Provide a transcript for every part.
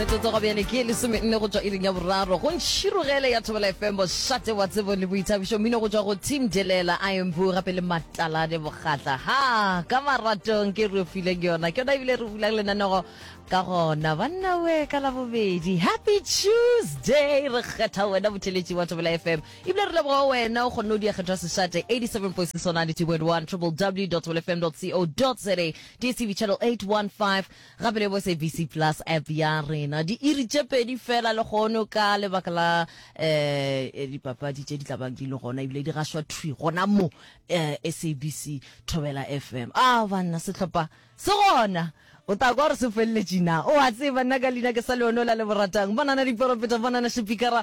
metsotso go bjane ke lesome nne go tswa iring ya boraro go ntšhirogele ya thobela fm bošate wa tsebo le boithabišo mmino go tswa go team delela a embu gape le matalane bokgatla ha ka maratong ke re fileng yona ke yona ebile re bulang lenanego ka gona banna we ka labobedi happy tuesday re kgetha wena botheletši wa thobela fm ebile re leboga wena o kgonne o diakgetho ya sešate 87.6 92.1 www.tobelfm.co.za dstv channel 815 Gape le bo SABC Plus App ya rena. Diiri tše pedi fela lehono ka lebaka la eh, dipapadi tše di tla bang di le gona ebile di gašwa thwi gona mo eh, SABC Thobela FM. A ah, banna sehlopha se gona o ta kwa gore se feleletše na o a tseba nna ka leina ke sa leono la le boratang banana diporopeta banana shepikara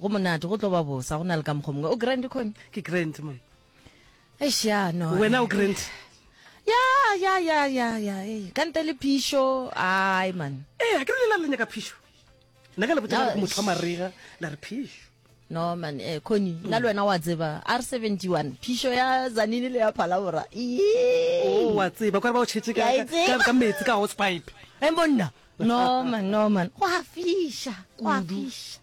go monate go tlo ba bosa go na le ka mokgwa mongwe o grand khone ke grand man eish ya no wena o grand ya ya ya ya ya ei ka ntle le phišo ai man ee eh, a ke re lela le nyaka phišo nna ka le botsa gore motho wa marega la re phišo no man eh khoni mm. nna le wena wa tseba r 71 phišo ya zanini le ya phalabora oh, wa tseba kware ba o tšhetse ka metsi ka hosepipe e eh, monna Norman, Norman, go a fiša, go a fiša.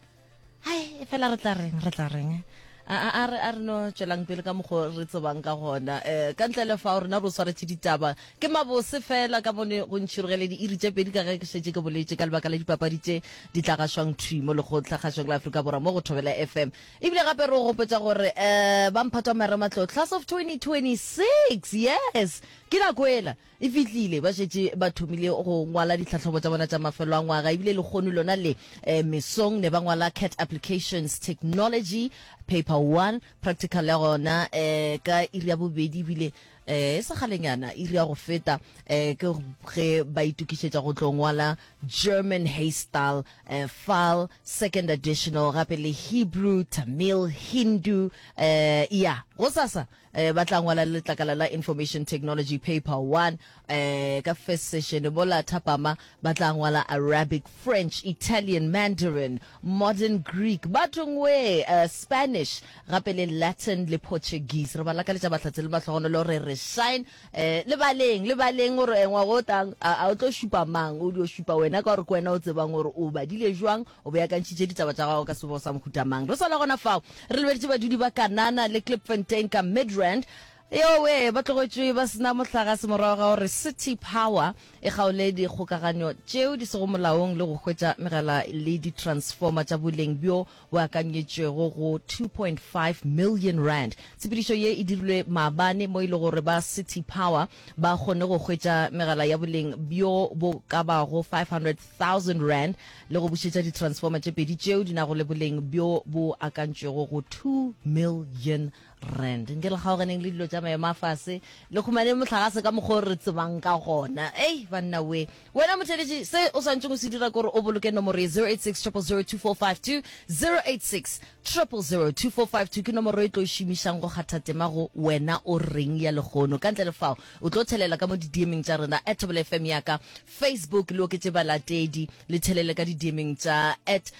Hai, e fela re tla reng, re tla reng. A a a re a re no tšwelang pele ka mokgo re tsebang ka gona. Eh ka ntle le fa rena re swaretše ditaba. Ke mabose fela ka bone go ntšhirogele di iri tše pedi ka ge ke šetše ke boletše ka lebaka la dipapadi tše di tla gashwang thwi mo lekgotla gashwang la Afrika Borwa mo go Thobela FM. Ebile gape re go gopetša gore eh ba mphatwa mere matlotlo class of 2026. Yes. Ke nako ela. E fihlile, ba šetše ba thomile go ngwala ditlhahlobo tša bona tša mafelo a ngwaga, ebile lehono lona le, eh, mesong ne ba ngwala cat applications, technology, paper one, practical ya gona, eh, ka iri ya bobedi, ebile, eh, e sa kgalenyana, iri ya go feta, eh, ke ge ba itokišetša go tlo ngwala German Haystal, eh, fal, second additional, gape le Hebrew, Tamil, Hindu, eh, ya, gosasa, Eh, ba tla ngwala le letlakala la Information Technology Paper 1 eh, ka first session bola thapama ba tla ngwala Arabic, French, Italian, Mandarin, Modern Greek, batongwe eh, Spanish gape le Latin le Portuguese. Re ba lakaletša bahlatse le mahlogonolo re re shine eh, le baleng le baleng gore engwa go tang a a o tlo šupa mang o dio šupa wena ka gore ke wena o tsebang gore o badile jwang O beakantšhitše ditaba tša gagwe ka sebo sa mohuta mang? Re sa le gona fao, re lebeditše badudi ba Kanana le Klipfontein ka Midrand. Yowe! Ba tlogetšwe ba se na mohlagase morago ga gore City Power e kgaole dikgokaganyo tšeo di sego molaong le go hwetša megala le ditransformer tša boleng bjo bo akanyetšwego go R2.5 million. Tshepedišo ye e dirilwe maabane mo e lego gore ba City Power ba kgonne go hwetša megala ya boleng bjo bo ka bago 500 thousand rand le go bušetša di-transformer tše pedi tšeo di nago le boleng bjo bo akantšwego go two million rand. Nke le kgaoganeng le dilo tša maemo a fase, le humaneng mohlagase ka mokgwa o re tsebang ka gona. Ei, banna we! Wena motheeletši, se o swanetšeng o se dira ke gore o boloke nomoro ye, 0860002452, 0860002452 ke nomoro e tlo e šomišang go kgatha tema go Wena o Reng ya lehono. Ka ntle le fao, o tlo thelela ka mo didiemeng tša rena. At Thobela FM ya ka, Facebook le oketše balatedi, le tšhelele ka didiemeng tša at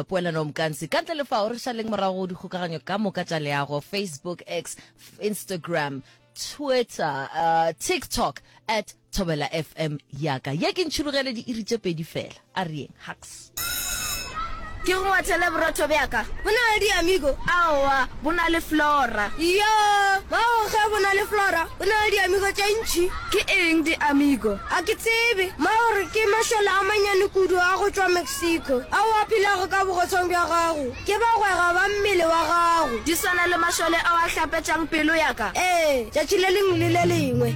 Poelanomkanse. Ka ntle le fao, re šaleng morago go dikgokaganyo ka moka tša leago, Facebook, X, Instagram, Twitter, TikTok, at Thobela FM ya ka. Ye ke ntšhurugele diiri tše pedi fela. A re yeng, Hux. Ke go ngwathele borotho bja ka. Bo na le diamigo? Aowa, bo na le flora. Iyo, mago ge bo na le flora, bo na le diamigo tše ntši. Ke eng diamigo? A ke tsebe. Mago re ke mašole a mannyane kudu a go tšwa Mexico, ao a phelago ka bogotshong bja gago. Ke bagwera ba mmele wa gago. Di swana le mašole ao a hlapetšang pelo ya ka? Ee, tšatši le lengwe le le lengwe.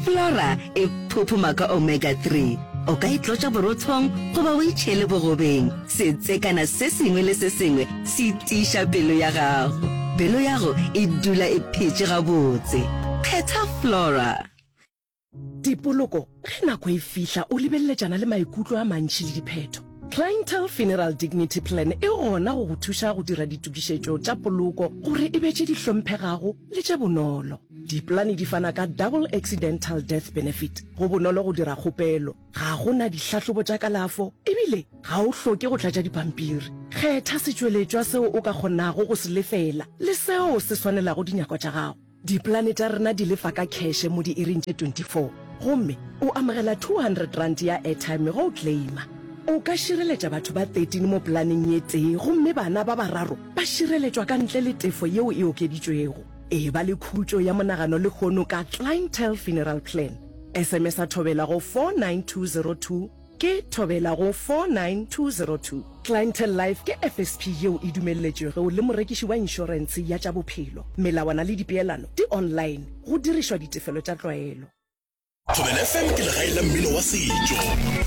Flora E phuphuma ka omega 3. O ka e tlotša borothong goba o e tšhele bogobeng. Setsekana se sengwe le se sengwe se tiiša pelo ya gago. Pelo yago e dula e phetše gabotse. Phetha Flora. Tipoloko, Ge nako e fihla o lebeleletšana le maikutlo a mantši le diphetho. Clientele Funeral Dignity Plan e gona go go thuša go dira ditokišetšo tša poloko gore e be tše di hlomphegago le tše bonolo. Dipolane di fana ka Double Accidental Death Benefit. Go bonolo go dira kgopelo. Ga go na dihlahlobo tša kalafo ebile ga o hloke go tlatša dipampiri. Kgetha setšweletšwa seo o ka kgonago go se lefela le seo se swanelago dinyako tša gago. Dipolane tša rena di lefa ka kheshe mo diiring tše 24 gomme o amogela R200 ya airtime ge o claima. O ka šireletša batho ba 13 mo polaneng ye tee gomme bana ba bararo ba šireletšwa ka ntle le tefo yeo e okeditšwego. Eba le khutšo ya monagano lehono ka Clientele Funeral Plan. SMS-a Thobela go 49202 ke Thobela go 49202. Clientele Life ke FSP yeo e dumelletšwego le morekiši wa inšorense ya tša bophelo. Melawana le dipeelano di online, go dirišwa ditefelo tša tlwaelo. Thobela FM ke legae la mmino wa setšo.